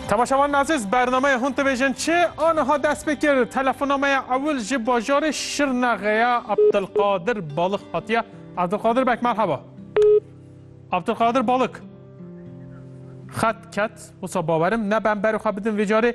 Temaşevan Aziz bernameyê hûn dibêjin çi aniha dest pê kir telefona me ya ewil ji bajarê Şirnexê ya Abdulkadir Balık hatiye. Abdulkadir bek merhaba. Abdulkadir Balık. Xet ket wisa bawerim ne ben berê xwe bidin vê carê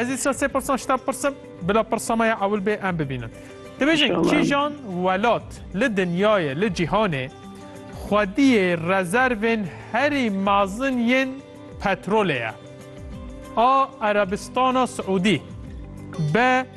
Ez îsa sê pirsan ji te bipirsim, bila pirsa me ya ewil bê em bibînin. Dibêjin kîjan welat li dinyayê, li cîhanê xwediyê rezervên herî mezin yên petrolê ye? A. Erebistana Siûdî B.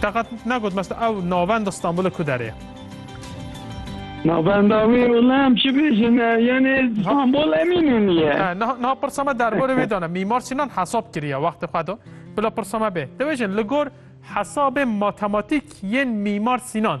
Te qet negot mes tu ew navenda Stenbolê ku derê ye? Navenda wî wila em çi bêjin e, yanê Stenbol Emînûnî ye. He, niha niha pirsa me derbarê wê de ne. Mîmar Sînan hesab kiriye wextê xwe de. Bila pirsa me bê. Dibêjin li gor hesabên matematîk yên Mîmar Sînan,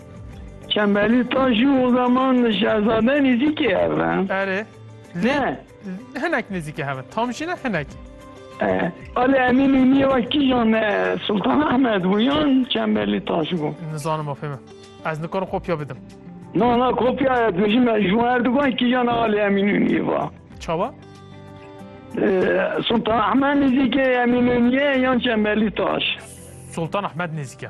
Çembelî ta jî o zaman şehzade nêzîkê hev e. Erê. Lê Ne. hinek nêzîkê hev e. Tam jî ne hinek. E, Ali Emîn Mîmiyê wek kîjan ne Sultan Ahmed bû yan Çembelî ta jî bû. Nizanim ma fême. Ez nikarim kopya bidim. Na na kopyaya tu ji me ji wan Erdogan kîjan ne Ali Emîn Mîmiyê va. Çawa? E, Sultan Ahmed nêzîkê Emîn Mîmiyê yan Çembelî Taş. Sultan Ahmed nêzîke.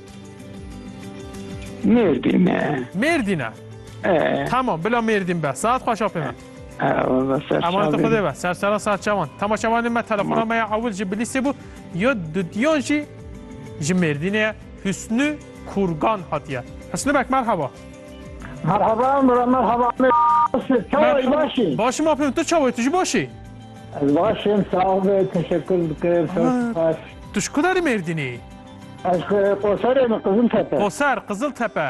Mêrdîn e. Mêrdîn e. E. Tamam bila Mêrdîn be. Saet xweş a pê me. Emaneta Xwedê be. Serçera serçevan. Temaşevanên me telefona me ya ewil ji Bilîsê bû. Ya dudiyan jî ji Mêrdînê ye. Husnû Kurgan hatiye. Husnû bek merhaba. Merhaba Mira merhaba. Çawayî başî. Başîm a pê min. Tu çawayî tu jî başî? Ez başim sağ ol teşekkür dikim. Çok spas. Tu şkudarî Mêrdînî? Ez Qoserê me Qiziltepe. Qoser, Qiziltepe.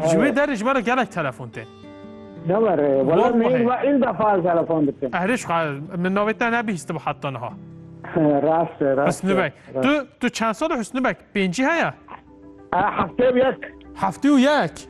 Ji wê derê ji me re gelek telefon tê. Ne were. Wala meyîn wa îlda far telefon dikim. Erê ji xwe min navê te nebihîstibo heta niha. Rast e, rast e. Husnû Beg. Tu, tu çend sal e Husnû Beg? Pêncî heye? Heftê û yek. Heftê û yek?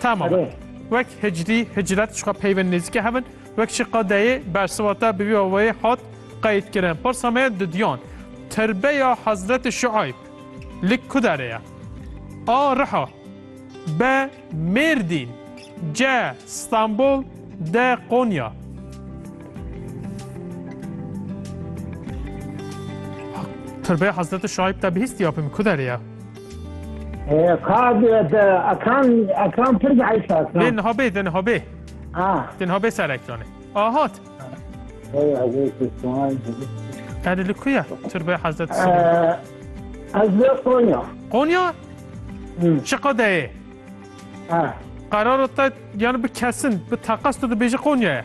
Tamam e. Wek hicrî, hicret ji xwe peyvên nêzîkê hev in. Wek jî qedeyê bersiva te bi vî awayê hat qeydkirin. Pirsa me ye didiyan. Tirbeya Hezretê Şueyb li ku derê ye? A. Riha B. Mêrdîn C. Stenbol D. Konya Tirbeya Hezretê Şueyb te bihîstiya pê min ku derê ye? Kad ekan ekan pir bi heyf ekan. Lê niha bê din ha bê. Ah. Din ha bê ser ekranê. Ah hat. Hadi li kuya? Türbe Hazreti Süleyman. Ez li Konya. Konya? Şıka deyê. Kararı te yani bir kesin, bir takas da bêji Konya'ya.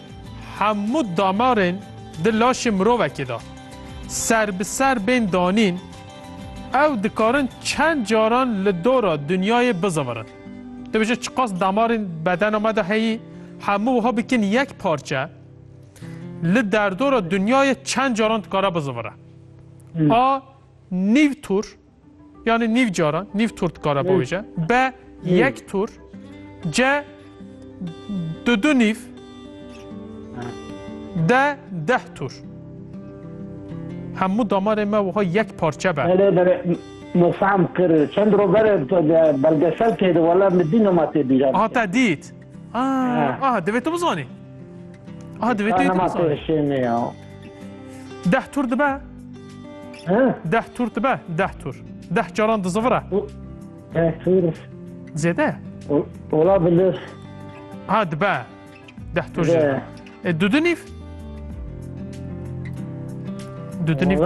Hemû damarên di laşê mirovekê de ser bi ser bên danîn, ew dikarin çend caran li dora dinyayê bizivirin. Tu bêje çiqas damarên bedena me de heyî, hemû wiha bikin yek parçe, li derdora dinyayê çend caran dikare bizivire. A nîv tur. Yanî nîv caran, nîv tur dikare biavêje. B yek tur. C du du nîv. D deh tur. Hemû damarê me wiha yek parçe be. Belê belê mefam kir. Çend roj berê belgesel kêdi wala min dî nema tê bîra bike. Aha te dît. Aha divê tu bizanî. Aha divê tu yê tu bizanî. Deh tur dibe? Deh tur dibe? Deh tur. Deh caran dizivire? Deh tur. Zêde? Ola bilir. Ha dibe. Deh tur jî. E du dinîv? Du dinîv.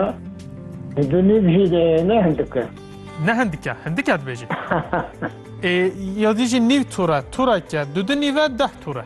E du dinîv jî ne hindike. Ne hindike. Hindike dibêjî. E ya dijî nîv tura. Tura ke. Du dinîve deh tura.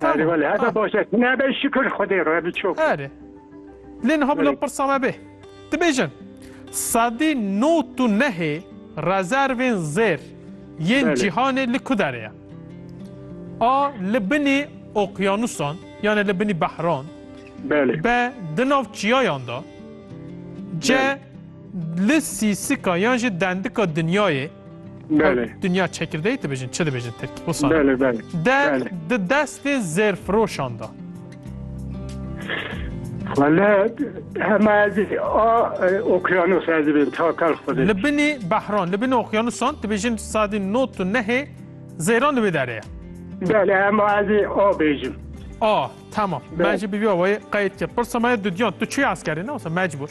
Erê welê heta baş e. Tu nebe şikir Xwedê re bi çok. Erê. Lê niha bila pirsa me bê. Dibêjin sedî not û nehê rezervên zêr yên cîhanê li ku derê ye? A li binî oqyanusan yanê li binî behran? B di nav çiyayan de? C Li sîsika yan jî dendika dinyayê Belê. Dinya çekirdeyê dibêjin çi dibêjin tirkî wisa. Belê belê. De di destê zêrfiroşan da. Xwelet hema ez a okyanos ez dibin ta kal xwedê. Li binê behran, li binê okyanusan dibêjin sadî not û nehê zêran li wê derê ye. Belê hema ez a bêjim. A, tamam. Ben jî bi vî awayê qeyd kir. Pirsa me ye dudyan, tu çi eskerî ne wisa mecbûr.